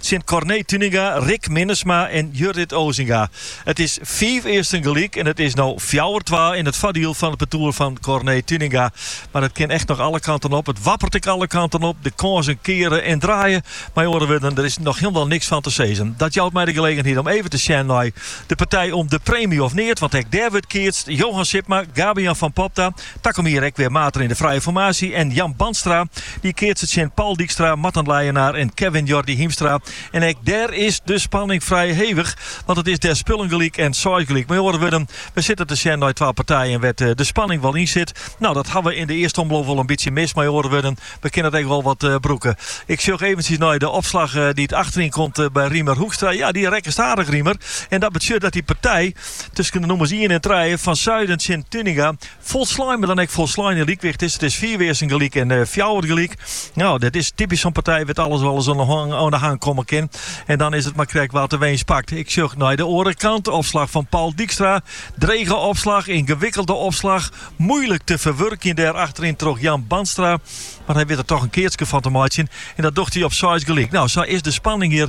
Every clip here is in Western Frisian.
Tsjin Corné Tuinenga, Rick Minnesma en Jurrit Osinga. It is fiif earsten gelyk en it is no fjouwer twa yn it foardiel fan it partoer fan Corné Tuinenga. Mar it kin echt noch alle kanten op. It wappert ek alle kanten op. De kânsen keare en draaie. Mei oare wurden, der is noch hielendal niks fan te sizzen. Dat jout my de gelegenheid om even te sjen nei de partij om de preemje of neat, want ek dêr wurdt keatst. Johan Sipma, Gabe-Jan van Popta, Takom jier ek wer maten yn de frije formaasje en Jan Bandstra die keatse tsjin Paul Dijkstra, Marten Leijenaar en Kevin Jordi Hiemstra. En ek dêr is de spanning frij hevich, want it is dêr spullen gelyk en seis gelyk. Mei oare wurden, we sitte te sjen nei twa partijen wêr't de spanning wol yn sit. Nou, dat hawwe we yn de earste omloop wol in bytsje mist. Mei oare wurden, we kinne it ek wol wat brûke. Ik sjoch eventsjes nei de opslach dy't achteryn komt by Riemer Hoekstra. Ja, dy rekkest aardich Riemer en dat betsjut dat dy partij, tusken de nûmers ien en trije fan suiden tsjin Tuninga folslein, mar dan ek folslein in lykwicht is. It is fier wearsen gelyk en eh, fjouwer gelyk. Nou, dat is typisch zo'n partij wat alles wel eens aan de hang, aan de hang komen kan. En dan is het maar krek wat de winst pakt. Ik zucht naar de andere kant. Opslag van Paul Dijkstra. Drege opslag, ingewikkelde opslag. Moeilijk te verwerken daar achterin toch Jan Banstra. Maar hij weet er toch een keertje van te maken. En dat docht hij op 6 gelijk. Nou, zo is de spanning hier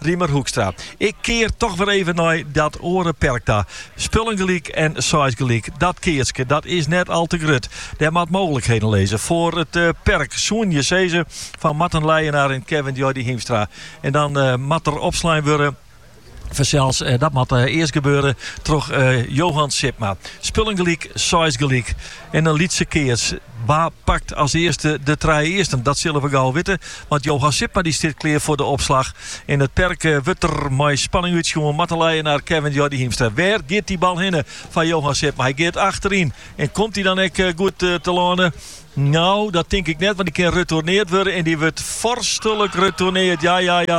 Riemer Hoekstra, Ik kear toch wer even nei dat oare perk ta. Spullen gelyk en seis gelyk, dat keatske dat is net al te grut. Der moat mooglikheden lizze foar it perk. Soenen je sizze fan Marten Leijenaar en Kevin Jordi Hiemstra. En dan moat der opslein wurde fansels. Dat moat earst gebeure troch Johan Sipma. Spullen gelyk, seis gelyk. En in lytse keats, wa pakt as earste de trije earsten? Dat sille we gau witte, want Johan Sipma dy stiet klear foar de opslach. Yn it perk wurdt der mei spanning útsjoen, Marten Leijenaar Kevin Jordi Hiemstra. Wêr giet dy bal hinne foar Johan Sipma? Hy giet achteryn en komt dy dan ek goed telâne? No, dat tink ik net, want dy kin retoerneard wurde en dy wurdt foarstlik retoerneard. Ja, ja, ja,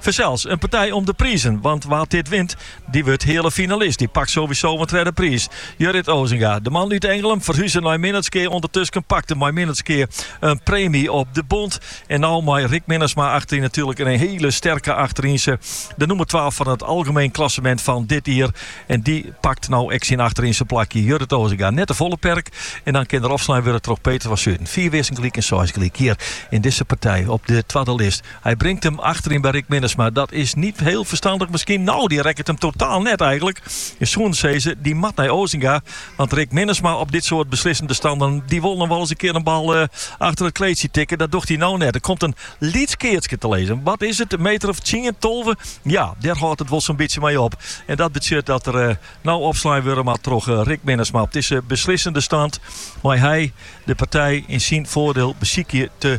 Fansels in partij om de prizen, want wa't dit wint, dy wurdt heale finalist. Dy pakt sowieso in tredde priis. Jurrit Osinga, de man út Ingelum, ferhuze nei Minnertsgea. Undertusken pakt er mei Minnertsgea in preemje op de bond. En no mei Rick Minnesma achteryn natuerlik en in hiele sterke achterynse. De nûmer twa fan it algemeen klassemint fan dit jier. En dy pakt no ek syn achterynse plakje. Jurrit Osinga, net de folle perk. En dan kin der opslein wurde troch Peter van Zuiden. Fiif earsten gelyk en seis gelyk. Hjir yn dizze partij op de twadde list. Hy bringt him achteryn by Rick Minnesma. Dat is niet heel verstandig misschien. Nou, dy rekket him totaal net eigenlik. Je soene sizze, dy moat nei Osinga. Want Rick Minnesma op dit soart beslissende standen, dy wol noch wolris in kear in bal achter it kleedsje tikke. Dat docht hy nou net. Der komt in lyts keatske te lizzen. Wat is it, in meter of tsien, tolve? Ja, dêr hâldt it wol so'n bytsje mei op. En dat betsjut dat der nou opslein wurde moat troch Rick Minnesma. Op dizze beslissende stand mei hy de partij yn syn foardiel besykje te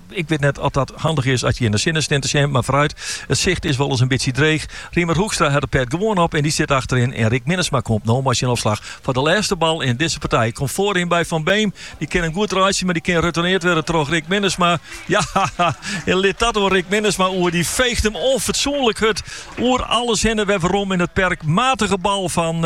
Ik wit net oft dat handich is as je yn 'e sinne steane te sjen, mar foaruit. It sicht is wolris in bytsje dreech. Riemer Hoekstra hat de pet gewoan op en dy sit achteryn en Rick Minnesma komt no mei syn opslach foar de lêste bal yn dizze partij. Komt foaryn by Van Beem, dy kin him goed reitsje, mar dy kin retoerneard wurde troch Rick Minnesma. Jahaha! En lit dat oan Rick Minnesma oer, dy feecht him onfatsoenlik hurd oer alles hinne wer werom yn it perk. Matige bal fan.